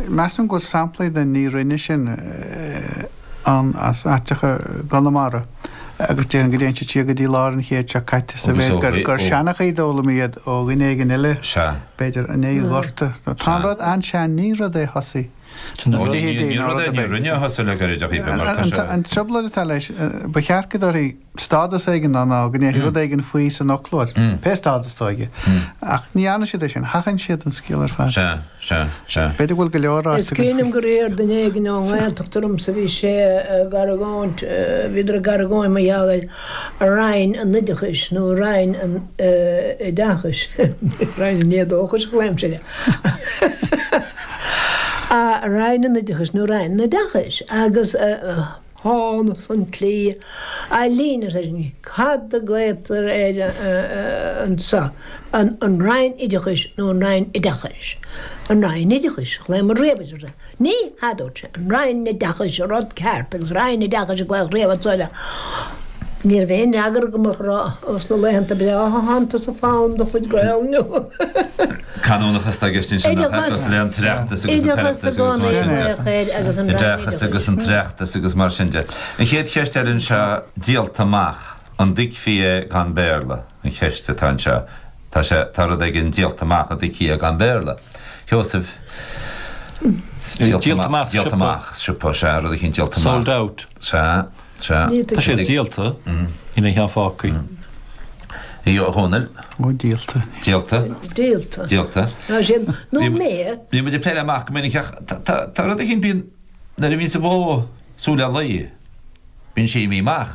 Measaim go bhfuil samplaí den 'ní rinne sin' ann as aiteacha gConamara agus déarfainn go dtéann siad siar go dtí lár an chéid seo caite sa mhéid gur seanchaí a d'fhoghlaim iad ó dhuine éigin eile, b'fhéidir i ndiaidh an Ghorta. Tá an rud an-sean, ní rud é thosaigh sna fichidí ná rud ar bith. An trioblóid atá leis ná, ba cheart go dtabharfaí stádas éigin ná ná go ndéarfaí rud éigin faoi san fhoclóir. Pé stádas atá aige. Ach ní dhéanann siad é sin. Seachnaíonn siad an scéal ar fad. Sea, sea, sea. B'fhéidir go bhfuil go leor áit Is againn faoi. Cuimhním gur iarr duine éigin ón nGaeltacht ormsa a bhí sé ag argóint, bhíodar ag argóint mar gheall ar Roinn an Oideachais nó Roinn an Oideachais, Roinn an Éadóchais a ghlaoimse le Roinn an Oideachais nó Roinn an Oideachais agus thángthas chun Raidió na Gaeltachta cad a glaotar air anseo, an Roinn Oideachais nó an Roinn Oideachais? An Roinn Oideachais a ghlaomar riamh air, agus ní hea, dúirt sé, an Roinn Oideachais, rud ceart, agus Roinn Oideachais a glaodh riamh anseo air. Ní raibh aon fhreagra agam ach a rá, Ó sna laethanta breátha thángthas ag fáil do chuid Gaelainne. Canúnachas atá i gceist ansin, nach ea? Cosúil le an tOireachtas agus an tOireachtas agus mar sin de. Oideachas agus an tOireachtas agus mar sin de. An chéad cheist eile anseo, díolta amach, an dtuigfí é gan Béarla? an cheist atá anseo. Tá sé, tá rud éigin díolta amach an dtuigfí é gan Béarla. A Sheosaimh? Díolta amach siopa. Siopa, sea, rud éigin díolta amach. Sold out. Sea. Tá sé díolta a déarfaí i dTír Chonaill. Ó, díolta. Díolta. Díolta. Díolta. Ná sin, nó mé. Bhí muid ag plé le amach go minic ach tá rud eicínt, bíonn, nuair a bhíonns bó ag súil le lao, bíonn sí imithe amach.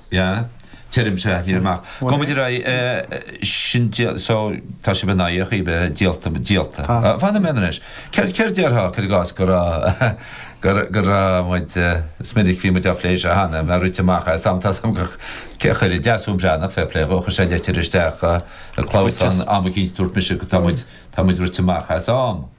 Yeah, tuigim, an-mhaith. Go mba mhaith rá eh, sin dial, so tá sibh in éineacht faoi díolta, díolta. Tá. Ah, fanfaidh mé anois. Céard, céard déarfá cuir i gcás go raibh, go raibh, go raibh muid eh, is minic bhí muid á phlé seo cheana, muid rite amach as am, tá a fhios agam go, cé a chuir isteach, Siobhán Breathnach, fair play dhó, chuir sé leitir isteach eh, ag clamhsán, am eicínt, dúirt mise go tá muid, tá muid rite amach as am.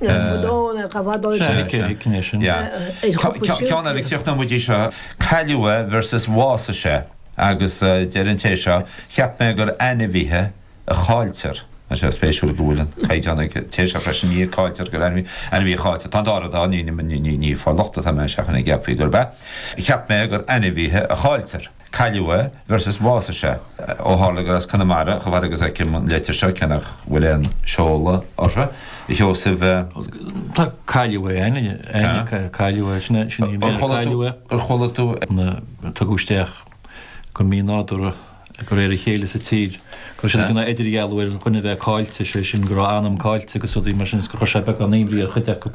Ceann eile ag teacht maidir le cailleadh versus bhásaigh sé, agus deir an té seo, cheap mé gur ainmhithe a chailltear. Tá sé spéisiúil go bhfuil an caighdeán ag an té seo freisin, ní a cailltear gur ainmhí, ainmhí a chailltear. Tá an dá rud ann, ní ag fáil locht atá mé seachas go gceapfaí gurb ea. Cheap mé gur ainmhithe a chailltear. Cailleadh é versus bhásaigh sé, ó tharla gur as Conamara chomh fada agus fheicim an leitir seo, cé nach bhfuil aon seoladh uirthi, a Sheosaimh. Tá cailleadh é, ainm cailleadh, cailleadh é, sin é, sin í mé, cailleadh é. Ar chuala tú é? Na, tugadh isteach go mínádúrtha, de réir a chéile sa tír, go raibh siad ag déanamh idirdhealú ar dhuine bheith caillte, sé sin go raibh a anam caillte agus rudaí mar sin agus gur chuir sé beagán imní ar chuid acu.